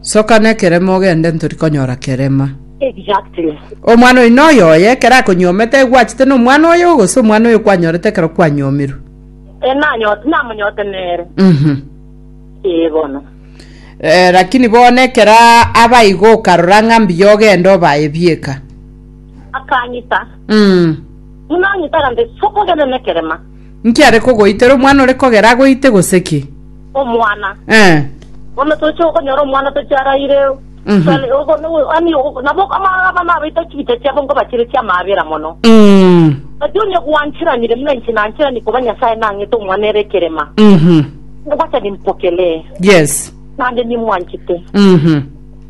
Soka nekerema ogende ntori konyora kerema. Exactly. Omwana oyo noyo oye ekero akonyuomete aye gwachete na omwana oyo gose omwana oyo kwanyorete ekero kwanyuomirwe? Eh, nanyote, namonyote nere. Mhm. Eh, bono. Eh, lakini bono ekero aba igo okarora ng'a mbuya ogende obaye bieka. Akanyita. Mm. Buna anyita agante, soka ogende nekerema. Nki are kogoitera? Omwana ore kogera agoite gose ki? Omwana. Eh. Bono toche okonyora omwana toche araire Sali- ogo- no- ani ogo- nabo ama- abana abaito chibita chiabo nkobachire chiamaabera mono. Mm. Gati onye gwanchiranire buna inche nanchirani koba Nyasae nang'ete omwana ere ekerema, Mhm. ngocha nimpokelee, Yes. naende nimwanchete. Mhm.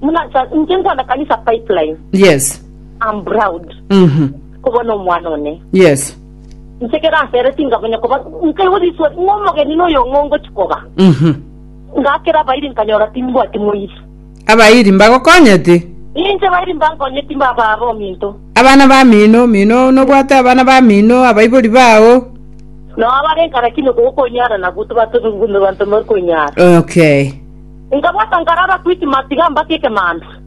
Buna nsa- inche nkwana kanisa pipeline, Yes. I'm proud Mhm. kobona omwana one. Yes. Inche ekero asere tingamanya koba nkaigwa riswa ng'a omogeni noyo ng'o ngochi koba. Mhm. Ngakera abairi nkanyora timbwati moiri. Abairi mbagokonyeti? Inche bairi mbankonyeti mbaba aba ominto. Abana bamino, mino nobwate abana bamino, abaibori bao. Nao abare nkare kino gokonyara nabwo tibatobigwe banto mori konyara. Okay. Nkabwata nkarara kwiti matiga mbake ekemanda.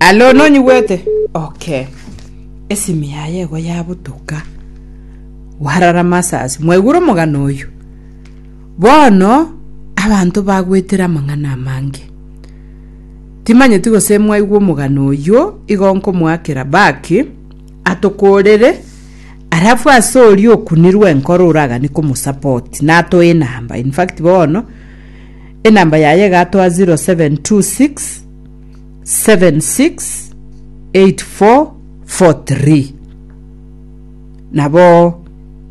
Alo nonyigwete? Okay. Esimi yaye ego yabutoka. Warara masasi. Mwaigure omogano oyo? Bono abanto bagwetire amang'ana amange. Timanyeti gose mwaigwe omogano oyo igo nkomoakera baki atokorere arafu ase oria okunirwe enkoro oragani komosupport natoe enamba. In fact bono Enamba yaye egatoa 0726768443 nabo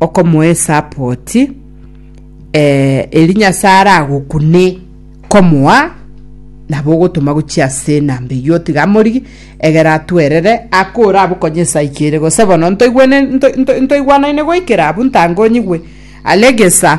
okomoa esapoti eri nyasae aragokune komoa nabo ogotoma gochia ase enamba eyio otiga amori egere atwerere ake orabokonye esaa ki ere gose bono ntoigwene ntoigwanaine goikera abwo ntangonyigwe are gesa.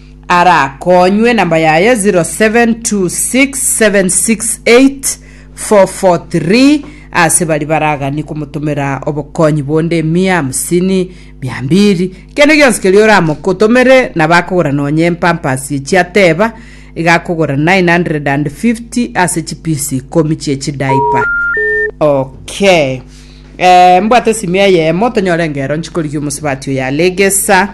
arakonywe namba yaye 0726768443 ase bari baragani komotomera obokonyi bonde emia hamsini mia mbiri kende gionsi keria oramokotomere nabo akogora nonye empampasi echi ateba iga akogora 950 ase chipisi ikomi chiechidaipa okay eh, mbwate esimi eyemo tonyore engero nchikorigia omosibati oyo alegesa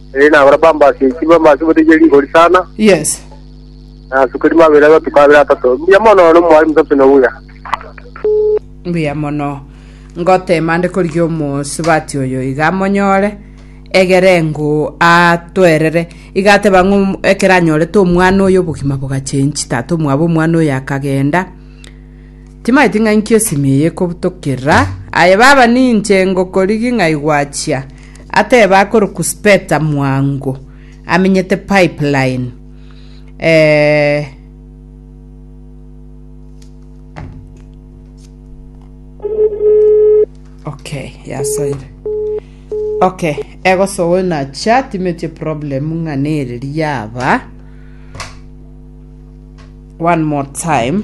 Eri nagora bambasi enchili bambasi bote eria rigori sana Yes. na asuka eri mabere amatuko abere atato mbuya mono no mwari musato na obuya mbuya mono ngotema nde korigia omosubati oyo iga amonyore egere ngoo atwerere iga ateba ng'o om- ekero anyorete omwana oyo obogima bogachenchi tata omwabo omwana oyo akagenda timaeti ng'a inki esimi eye ekobutokerera aye baba ninche ngokorigi ng'ai gwachia Ateba akorokwa Speta Mwango amenyete Pipeline eh. Okay, yasoire. Okay, egosoe na chat imetie problem ng'ana ere riaba. One more time.